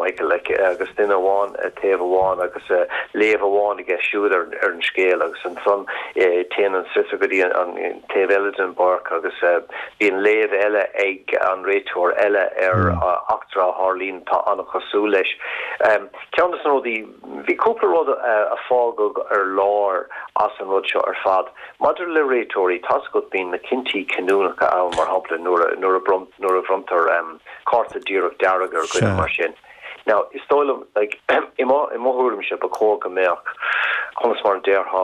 Michael agus duine amháin taobh amháin agus léamh amháin aige siúd ar an scéal agus ansan téann an sliotar go dtí an taobh eile den bpáirc agus bíonn léamh eile ag an réiteoir eile ar eachtra a tharlaíonn atá an-chosúil leis. Ceann de na rudaí, bhí cúpla rud a fágadh ar lár as an rud seo ar fad. Maidir le réiteoirí, tá 's agat, bíonn na cinntí cinniúnacha ann, mar shampla nuair a bhronntar, cárta díreach dearg ar dhuine mar sin. Now, is dóigh liom, like, i mo thuairimse, ba chóir go mbeadh, conas mar a déarfá,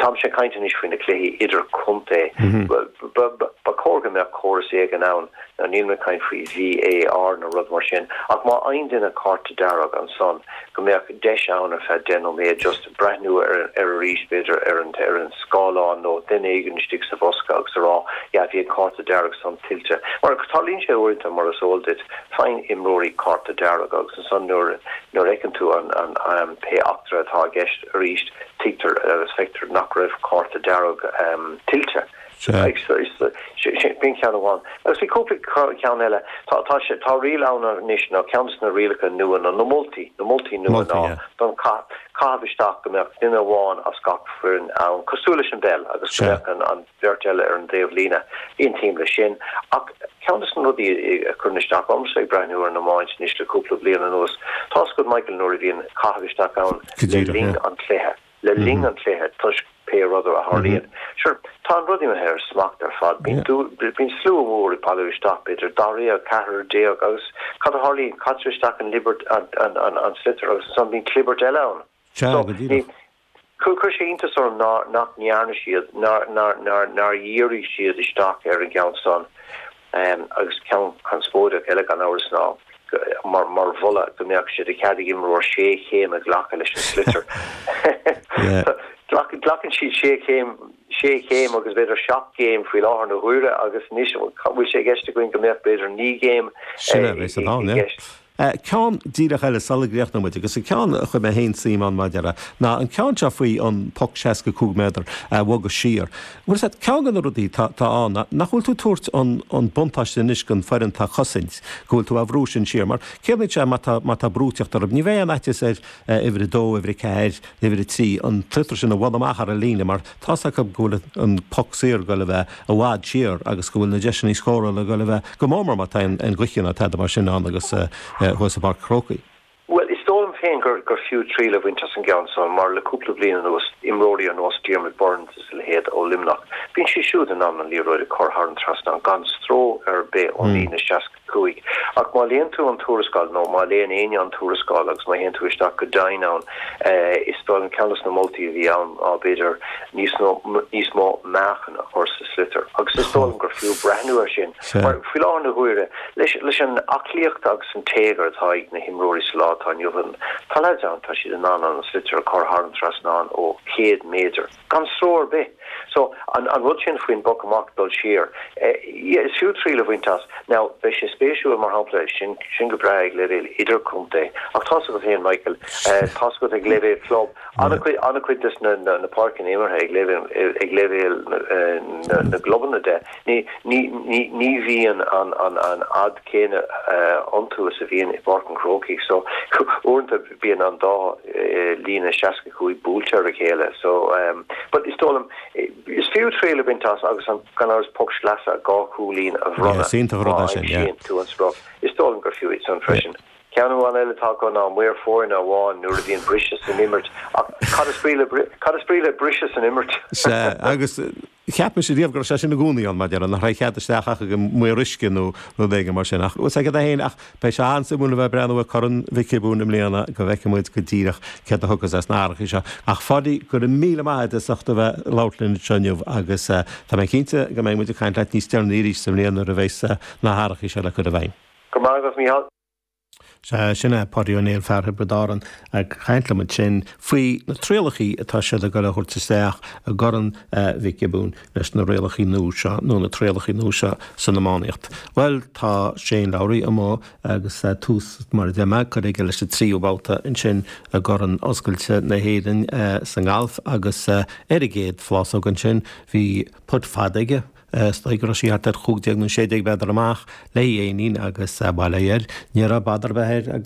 táimse ag caint anois faoi na cluichí idirchontae, ba chóir go mbeadh córas éigin ann, now níl mé ag caint faoi VAR nó rud mar sin, ach má fhaigheann duine cárta dearg, ansan go mbeadh deis ann ar feadh deich nóiméad just, breathnú air arís, b'fhéidir, ar an scáileán nó duine éigin istigh sa bhosca agus a rá, Yeah, bhí an cárta dearg san tuillte. Mar tarlaíonn sé uaireanta, mar is eol duit, faigheann imreoirí cárta dearg agus ansan nuair a fheiceann tú pé eachtra atá i gceist arís, tuigtear agus feictear nach raibh cárta dearg tuillte. Sea. B'in ceann amháin. Agus bhí cúpla ceann eile. Tá riail ann anois, nó ceann de na rialacha nua, nó na moltaí, na moltaí nua ná don chaith caitheamh isteach go mbeadh duine amháin as gach foireann ann, cosúil leis an bpeil, agus go mbeadh an bheirt eile ar an dtaobh líne. Aontaím leis sin. Ach ceann de na rudaí a chuireann isteach ormsa ag breathnú ar an iomáint anois le cúpla bliain anuas, tá 's agat Michael nuair a bhíonn caitheamh isteach ann le linn an chluiche. le linn an chluiche toisc pé rud a tharlaíonn. Sure, tá an rud imithe ó smacht ar fad. Bíonn slua mór ag bailiú isteach, b'fhéidir dáréag, ceathrar déag agus cad a tharlaíonn? Caitear isteach an liathróid, an sliotar agus ansan bíonn clibirt eile ann. Sea, go díreach. So, chuir sé iontas orm nach ndearna siad, nár dhírigh siad isteach ar an gceann san. agus ceann conspóideach eile gan amhras ná an moladh go mbeadh sé de chead ag imreoir sé chéim a ghlacadh leis an sliotar. Glacann siad sé chéim, sé chéim agus b'fhéidir seacht gcéim faoi láthair na huaire agus anois an bhfuil sé i gceist againn go mbeadh b'fhéidir naoi gcéim i gceist? Eh, ceann díreach eile sula gcríochnaigh muid, agus an ceann a chuir mé féin suim ann, ar ndóigh, ná an ceann seo faoi an poc seasca cúig méadar a bhogadh siar. Bhuel, is é ceann de na rudaí tá, tá ann ná nach bhfuil tú ag tabhairt an, an buntáiste anois den foireann atá ag cosaint, go bhfuil tú á bhrú sin siar, mar ciallaíonn sé má tá, má tá brú ag tíocht orthu, ní bheidh aon fhaitios ar, eh, uimhir a dó, uimhir a ceathair, uimhir a trí, an sliotar sin a bhualadh amach thar an líne, mar. tá's acu go bhfuil an poc saor ag dul a bheith i bhfad siar agus go bhfuil na deiseanna scórála ag dul a bheith go mór mór má tá aon ghaoth ann ná tada mar sin ann agus thuas i bPáirc an Chrócaigh. Bhuel, is dóigh liom féin gur fiú triail a bhaint as an gceann san mar le cúpla bliain anuas, imreoirí ar nós Diarmaid Byrnes is a leithéid ó Luimneach, bíonn siad siúd in ann an liathróid a chur thar an trasnán gan stró ar bith ón líne seasc. Cúig. Ach má léann tú an tuarascáil, nó má léann éinne an tuarascáil agus má théann tú isteach go deimhin ann, is dóigh liom, ceann dos na moltaí a bhí ann ná, b'fhéidir, níos nó níos mó meáchain a chur sa sliotar. Agus is dóigh liom gur fiú breathnú air sin, mar faoi láthair na huaire, leis an aclaíocht agus an téagar atá ag na himreoirí sa lá atá inniu ann, tá leaids ann, tá siad in ann an sliotar a chur thar an trasnán ó chéad méadar. gan stró ar bith. So, an rud sin faoin bpoc amach, dul siar, yeah, is fiú triail a bhaint as. Now, beidh sé spéisiúil, mar shampla, sin, sin go breá ag leibhéal idirchontae, ach tá's agat féin, Michael, tá's agat ag leibhéal club, an-chuid, an-chuid de na, na, na páirceanna imeartha ag leibhéal, ag leibhéal na, na, na gclubanna de, ní, ní, ní, ní bhíonn an, an, an fhad chéanna iontu is a bhíonn i bPáirc an Chrócaigh. So, uaireanta. bíonn an dá líne 65 buailte ar a chéile so but is dóigh liom is fiú triail a bhaint as agus an gan amhras poc sleasa dhá chúilín a bhronnadh yeah is iontach an rud é sin yeah má aimsíonn tú an sprioc is dóigh liom gur fiú iad san freisin yeah. Ceann amháin eile atá acu ná maor foirne amháin nuair a bhíonn briseadh san imirt ach cad is brí le cad is brí le briseadh san imirt? Sea agus. Cheap mise riamh go raibh sé sin i gcónaí ann, mar a déarfá, nach raibh cead isteach ach ag an maor uisce nó rud éigin mar sin. Ach sea, cad é fhéin, ach beidh sé an-suimiúil a bheith ag breathnú ar Chorn Mhic Giobúin i mbliana go bhfeicfidh muid go díreach céard a thiocfas as na hathrachaí seo. Ach a Pháidí, go raibh míle maith a'd as ucht a bheith ag labhairt linn anseo inniu agus tá mé cinnte go mbeidh muid ag caint leat níos deireanaí arís sa mbliain nuair a bheas na hathrachaí seo le cur i bhfeidhm. Go raibh maith agat Micheál. Sea, sin é Páidí Ó Néill, fear Thiobraid Árann, ag caint liom ansin faoi na trialachaí atá siad ag dul a thabhairt isteach i gCorn Mhic Giobúin leis na rialacha nua seo, nó na trialachaí nua seo san iománaíocht. Bhuel, tá Shane Lowry amuigh agus tús, mar a deir mé, curtha aige leis an tríú babhta ansin i gCorn Oscailte na hÉireann sa ngalf agus ar an gcéad phlásóg ansin bhí putt fada aige, Is dóigh go raibh sí thart ar chúig déag nó sé déag méadar amach, le haghaidh éinín agus bail air, ní raibh badar ar bith air agus.